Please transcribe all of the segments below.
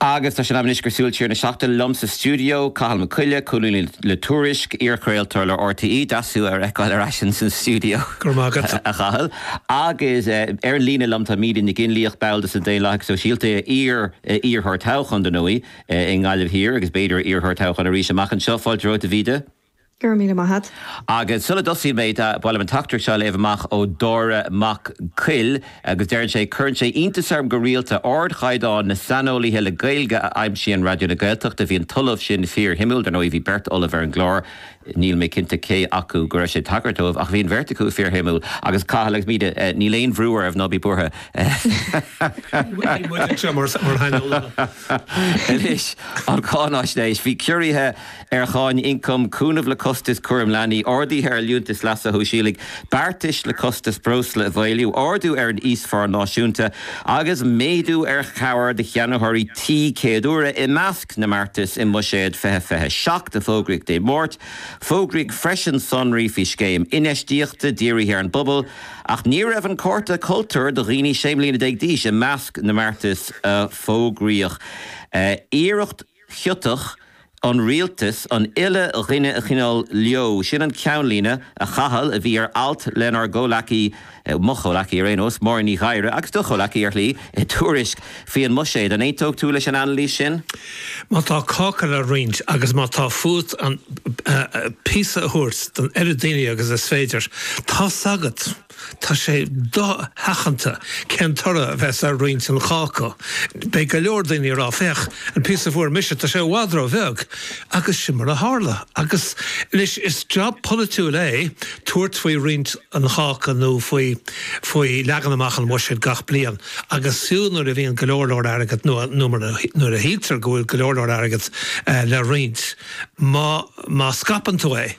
Agus tá sé in am anois go Súil Siar na Seachtaine liom sa stiúideo, Cathal Mac Coille, colúnaí le Tuairisc, iarchraoltóir le RTÉ, deas thú a fheiceáil ar ais ins an stiúideo, Go raibh maith agat. a Chathail. Agus ar an líne liom tá Míde Nic Fhionnlaoich, ball de na Daonlathaigh Sóisialta, iar-iarrthóir toghcháin, dar ndóigh, i nGaillimh Thiar agus b'fhéidir iarrthóir toghcháin arís amach anseo. Fáilte romhat, a Mhíde. Go raibh míle maith a't. Agus sula dtosaíonn mé, ba mhaith liom an teachtaireacht seo a léamh amach ó Dáire Mac Coille agus deireann sé, Cuireann sé iontas orm go rialta ardchaighdeán na saineolaithe le Gaeilge a aimsíonn Raidió na Gaeltachta. Bhí an tOllamh sin fíorshuimiúil. Dar ndóigh, bhí beirt ollamh ar an gclár. Níl mé cinnte cé acu go raibh sé ag tagairt dóibh ach bhí an bheirt acu fíorshuimiúil. Agus Cathal agus Míde, níl aon bhrú oraibh, ná bí buartha. Níl muid anseo mar shaineolaithe. Anois, an cháináisnéis. Bhí ciorruithe. ar cháin ioncaim, cúnamh le costais chúram leanaí, arduithe ar Liúntais Leasa Shóisialaigh, beartais le costais breosla a mhaolú, ardú ar an íosphá náisiúnta agus méadú ar chabhair do cheannaitheoirí tí céad uaire i measc na mbeartas i mBuiséad 2027 a fógraíodh Dé Máirt. Fógraíodh freisin sonraí faoi scéim infheistíochta dírithe ar an bpobal ach ní raibh an cárta cultúir do dhaoine sé mbliana déag d'aois i measc na mbeartas a fógraíodh. Iarracht. chiotach, ón rialtas, an uile dhuine a choinneáil leo. Sin an ceannlíne, a Chathail, a bhí ar alt lenár gcomhleacaí, mo chomhleacaí ar aon nós, Máirín Ní Ghadhra, agus do chomhleacaí, ar shlí, i Tuairisc faoi an mbuiséad. An aontófá leis an anailís sin? Má tá cáca le roinnt agus má tá fút an píosa a thabhairt don oiread daoine agus is féidir, tá's agat! Tá sé do-sheachanta cén toradh a bheas ar roinnt an cháca. Beidh go leor daoine ag rá, féach, an píosa a fuair mise, tá sé i bhfad ró-bheag! Agus sin mar a tharla. Agus anois, is job polaitiúil é tabhairt faoi roinnt an cháca nó faoi faoi leagan amach an bhuiséid gach bliain. Agus fiú nuair a bhíonn go leor leor airgead, nó nó nuair a shíltear go bhfuil go leor leor airgead le roinnt, má má scaipeann tú é,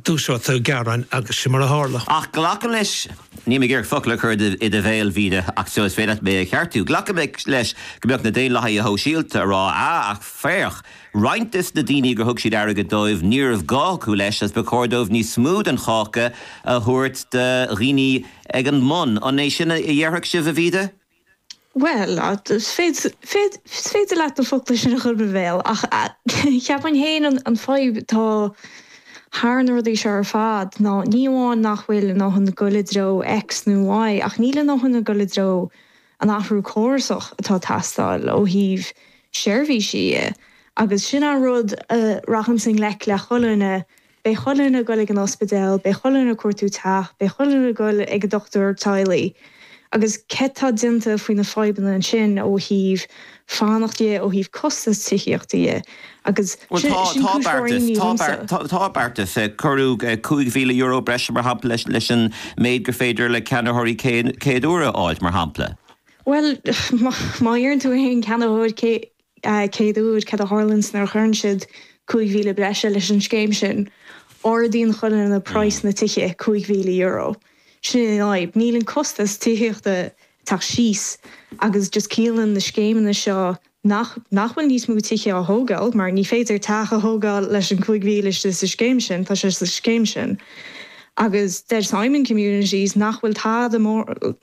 Dúiseoidh tú gearáin agus sin mar a tharla. Ach glacaim leis, níl mé ag iarraidh focal a chur i do bhéal, a Mhíde, ach só is féidir leat mé a cheartú, glacaim leis go mbeadh na Daonlathaithe Sóisialta ag rá, ah, ach féach, roinnt de na daoine gur thug siad airgead dóibh, ní raibh gá acu leis agus ba chóir dóibh níos mó den cháca a thabhairt do dhaoine ag an mbun. An é sin a dhéarfadh sibh, a Mhíde? Bhuel, is féidir leat na focla sin a chur i mo bhéal ach cheapfainn féin an fhadhb atá thar na rudaí seo ar fad ná ní amháin nach bhfuil a ndóthain ag dul i dtreo X nó Y ach níl a ndóthain ag dul i dtreo an athrú córasach atá ag teastáil ó thaobh seirbhísí dhe agus sin an rud a rachas i ngleic le chuile dhuine Beidh chuile dhuine ag goil ag an ospidéal, beidh chuile dhuine ag cuartú teach, beidh chuile dhuine ag goil ag an dochtúir teaghlaigh. Agus céard tá déanta faoi na fadhbanna ansin ó thaobh fanacht dhe, ó thaobh costas tithíochta dhe. Agus Bhuel tá, sin tá cúis mhór beartas, imní tá dhomsa. beart, tá beartas. Cuireadh €5,000 breise mar shampla leis, leis an méid gur féidir le ceannaitheoirí céad, chéad uaire a fháilt mar shampla. Bhuel má, má fhiafraíonn tú ar aon cheannaitheoir cé, chéad uair céard a tharlaíonns nuair a chuireann siad cúig mhíle breise leis an scéim sin? Ardaíonn chuile dhuine praghas na dtithe cúig mhíle euro. Sin é an fhadhb. Níl an costas tithíochta ag teacht síos agus just ciallaíonn na scéimeanna seo nach nach bhfuil níos mó tithe á thógáil mar ní féidir teach a thógáil leis an cúig mhíle istigh sa scéim sin, tá sé sa scéim sin. Agus deir Simon Communities nach bhfuil tada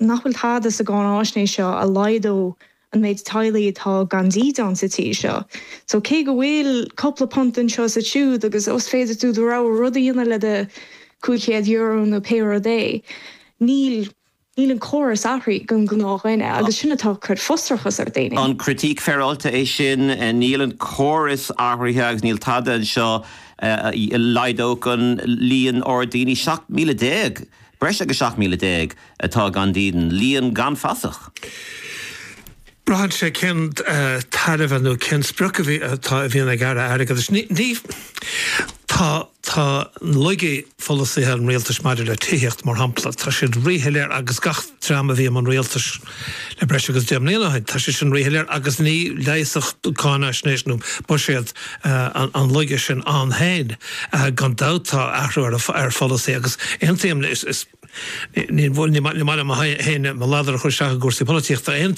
nach bhfuil tada sa gcáináisnéis seo a laghdódh an méid teaghlaigh atá gan dídean sa tír seo. So cé go bhfuil cupla punt anseo is ansiúd agus ó is féidir tú do rogha rud a dhéanamh le do €500 nó pé rud é, níl, níl an córas athraithe don gnáthdhuine agus sin atá ag cur frustrachas ar dhaoine. An critique féaráilte é sin, níl an córas athraithe agus níl tada anseo a laghdódh an líon ard daoine, 17,000, Breis agus 17,000 atá gan dídean, líon gan fasach. Braitheann sé cén tairbhe nó cén sprioc a bhí atá a bhíonn ag Aire Airgeadais. Ní, ní, tá, tá laigí pholasaithe an rialtais maidir le tithíocht mar shampla, tá siad ríshoiléir agus gach dream a bhí i mbun rialtais, Le breis agus deich mbliana ó shin, tá sé sin ríshoiléir agus ní leigheasfadh cáinaisnéis nó buiséad an laige sin ann féin. Gan dabht athrú ar pholasaí agus aontaím, ní maith liom féin mo ladar a chur isteach i gcúrsaí polaitíochta,